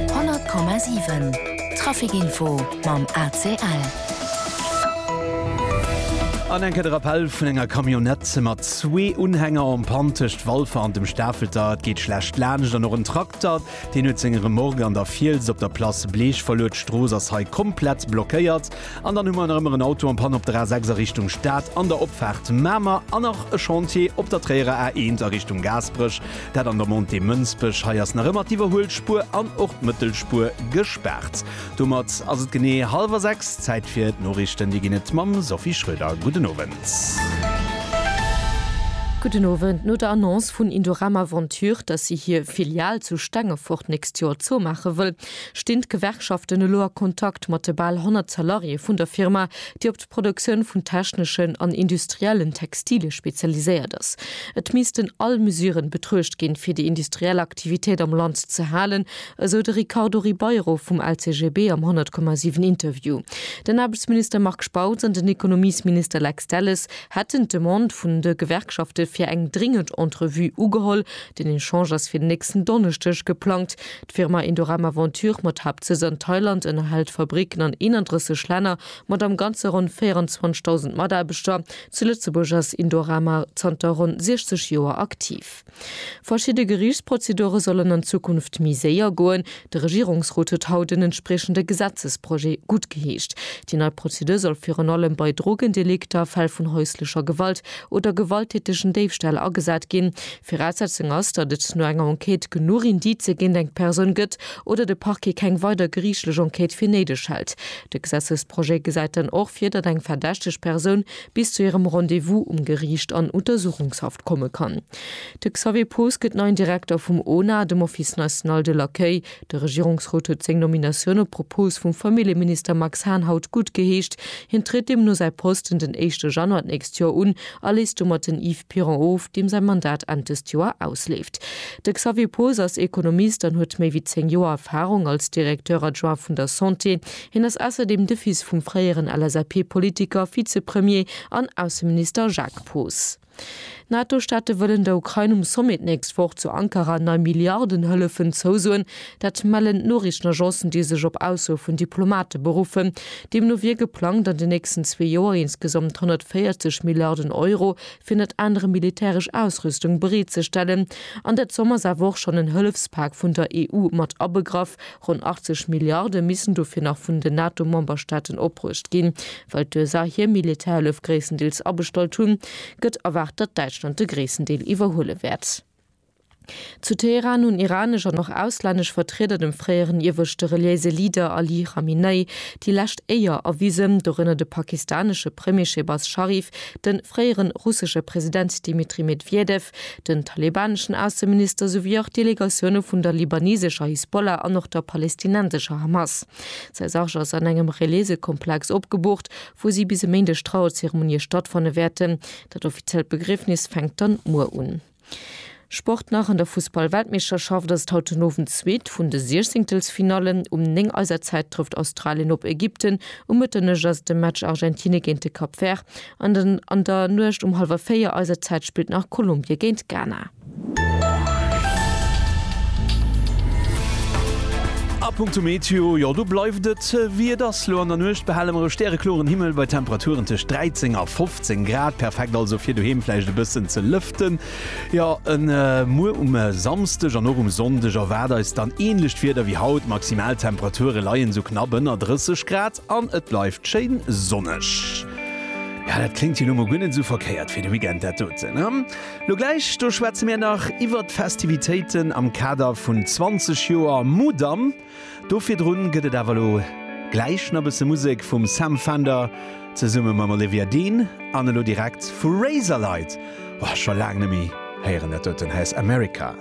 100,7 Trafic Info mam ACL. An enke de Rappell vun enger Camionnette mat zwee Unhänger en Panne tëscht Walfer an dem Stafelter. Et geet schlecht laanscht an och en Trakter, deen huet seng Remorque an der Fiels op der Place Bleech verluer. D'Strooss ass hei komplett blockéiert. An dann hu mer nach ëmmer en Auto en Panne op der A6 a Richtung Stad an der Opfaart Mamer an nach e Chantier op der Tréierer A1 a Richtung Gaasperech, dat an der Montée Mënsbech. Hei ass nach ëmmer d'Iwwerhuelspuer an och d'Mëttelspuer gespaart. Domat ass et genee hallwer sechs. Zäit fir d'Noriichten. Déi ginn et mam Sophie Schröder. Gudden Owend. Gudden Owend. No der Annonce vun Indorama Ventures, dass si hir Filial zu Stengefort d'nächst Joer zoumaache wëll, Stinn d'Gewerkschaften elo a Kontakt mat de bal 100 Salariéë vun der Firma, déi op d'Produktioun vun techneschen an industriellen Textilie spezialiséiert ass? Et missten all Mesuren betruecht ginn, fir déi industriell Aktivitéit am Land ze halen, esou de Ricardo Ribeiro vum LCGB am 100,7 Interview. Den Aarbechtsminister Marc Spautz an den Ekonomiesminister Lex Delles hätten d'Demande vun de Gewerkschafte fir eng dringend Entrevue ugeholl. Den Echange ass fir den nächsten Donneschdeg geplangt. D'Firma Indorama Venture mat Haaptsëtz an Thailand ënnerhält Fabricken an 31 Länner mat am Ganze ronn 24.000 Mataarbechter. Zu Lëtzebuerg ass Indorama zanter ronn 60 Joer aktiv. Verschidde Geriichtsprozedure sollen an Zukunft méi séier goen. De Regierungsrot huet haut en entspriechende Gesetzesprojet guttgeheescht. Déi nei Prozedur soll virun allem bei Drogendelikter, Fäll vun häuslecher Gewalt oder gewalttätegen Déifställ agesat ginn. D'Viraussetzung ass, datt et no enger Enquête genuch Indicë géint eng Persoun gëtt oder de Parquet keng weider geriichtlech Enquête fir néideg hält. De Gesetzesprojet gesäit dann och vir, datt eng verdächteg Persoun bis zu hirem Rendez-vous um Geriicht an Untersuchungshaft komme kann. De Xavier Poos gëtt neien Direkter vum ONA, dem Office national de l'accueil. De Regierungsrot huet seng Nominatioun op Propos vum Familljeminister Max Hahn haut guttgeheescht. Hien tritt deemno säi Posten den éischte Januar d'nächst Joer un a léisst domat den Yves. Piron of, deem säi Mandat Enn dëst Joer ausleeft. De Xavier Poos ass Ekonomist an huet méi wéi 10 Joer Erfarung als Directeur adjoint vun der Santé. Hien ass ausserdeem de Fils vum fréieren LSAP-Politiker, Vizepremier an Ausseminister Jacques Poos. NATO-Staate wëllen der Ukrain um Sommet d'nächst Woch zu Ankara nei Milliardenhëllefen zousoen. Dat mellen d'Noriichtenagencen, déi sech op Aussoe vun Diplomate beruffen. Deemno wier geplangt, an den nächsten zwee Joer insgesamt 140 Milliarden Euro fir ënnert anerem militäresch Ausrüstung bereetzestellen. An der Zomm ass awer och schonn en Hëllefspak vun der EU mat abegraff. Ronn 80 Milliarde missten dofir nach vun den NATO-Memberstaaten opbruecht ginn. Well d'USA hir Militärhëllef gréisstendeels abestallt hunn, gëtt erwaart, datt Däitschland de gréissten Deel iwwerhuele wäert. Zu Teheran hunn iranesch an och auslännesch Vertrieder dem fréieren ieweschte reliéise Leader Ali Khamenei déi lescht Éier erwisen, dorënner de pakistanesche Premier Shehbaz Sharif, de fréiere russesche President Dmitri Medwedew, den talebaneschen Ausseminister souwéi och Delegatioune vun der libanesescher Hisbollah an och der palestinensescher Hamas. Säi Sarg ass an engem reliéise Komplex opgeboocht, wou si bis e Méindeg Trauerzeremonie stattfanne wäerten. Dat offiziellt Begriefnis fänkt dann muer un. Sport nach, An der Fussball-Weltmeeschterschaft ass et haut den Owend d'zweet vun de Siechzéngtelsfinallen. Um 9 eiser Zäit trëfft Australien op Ägypten. Um Mëtternuecht ass et de Match Argentine géint de Cap Vert. An an der Nuecht um hallwer véier eiser Zäit spillt nach Kolumbie géint Ghana. A punkto Meteo, jo do bleift et wéi et ass. Lo an der Nuecht behale mer e stärekloren Himmel bei Temperaturen tëscht 13 a 15. 17 Grad perfekt also fir doheem vläicht e bëssen ze lëften. Jo en Muer um Samsdeg an och um Sonndeg erwaart eis dann änlecht Wieder wéi haut. D'Maximaltemperature leien esou knapp ënner 30 Grad an et bleift schéin sonneg. Ja dat kléngt jo lo mol guer net esou verkéiert fir de Weekend dat doten, ne? Lo gläich do schwätze mir nach iwwert d'Festivitéiten am Kader vun 20 Joer Mudam. Do virdrun gëtt et awer elo gläich na bësse Musek vum Sam Fender zesumme mam Olivia Dean an elo direkt vu Razorlight, oh scho laang nemme héieren dat doten heiers America.